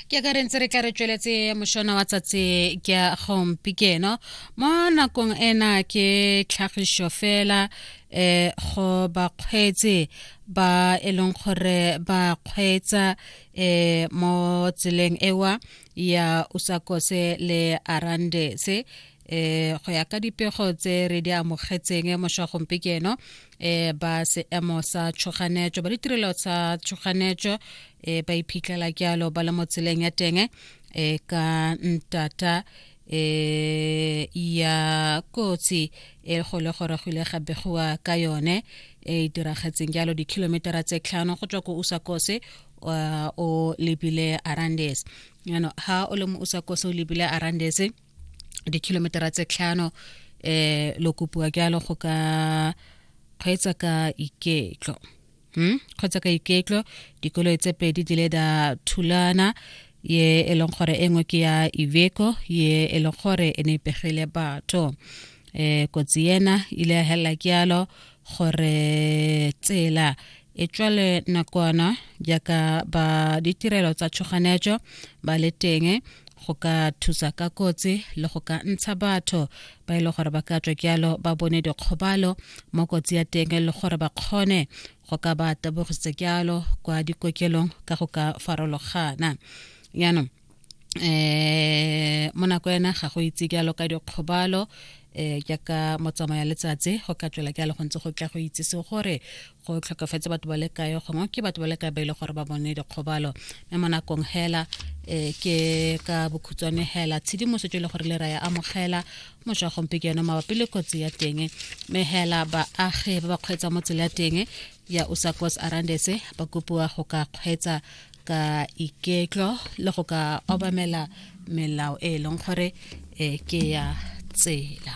ke ka re ntse re tla re tsweletse mošona wa tsatsi ke ya gompi keno mo nakong ena ke tlhagišo fela um go bakgweetsi ba e leng gore ba kgweetsa um mo tseleng ewa ya usakose le arandese eh go ya ka dipego tse re di amogetseng moshwagompe ke eno eh ba seemo sa tshoganetso ba ditirelo tsa tshoganetso eh ba iphitlhela ke alo ba le mo tseleng ya teng eh ka ntata eh ya kotsi e go le gore go ile ga begiwa ka yone e diragetseng jalo di-kilometera tse tlhano go tswa ko usakose o lebile arandes ano ha o le mo usakose o lebile arandes dikilometera tse tlhano eh lo kopiwa jalo go ka kgweetsa ka iketlo hmm? kgweetsa ka iketlo dikoloi tse pedi di le da thulana ye e leng gore e nngwe ke ya iveco ye e leng gore e ne e pegile batho um kotsi ena ile ya helela ke yalo gore tsela e tswa le nakwana jaaka ba ditirelo tsa tshoganetso ba le teng go ka thusa ka kotsi le go ka ntsha batho ba e le gore ba ka tswa jalo ba bone dikgobalo mo kotsi ya teng le gore ba kgone go ka ba tabogisa jalo kwa dikokelong ka go ka farologana jaanong eh mo nako ena ga go itse ke alo ka dikgobalo eh jaaka motsamaya letsatsi go ka tswela ke alo go ntse go tla go itse se gore go tlhokafetse batho ba le kae gongwe ke batho ba le kae ba ile gore ba bone dikgobalo mme mo nakong hela eh ke ka bokhutswane hela tshedimosetso le gore le ra ya amogela moswa gompe ke yone mabapi le kotsi ya teng mme hela baagi ba ba kgweetsa mo tsela ya teng ya usakos arandese ba kopiwa go ka kgweetsa ka iketlo le go ka obamela melao e e leng gore e ke ya tsela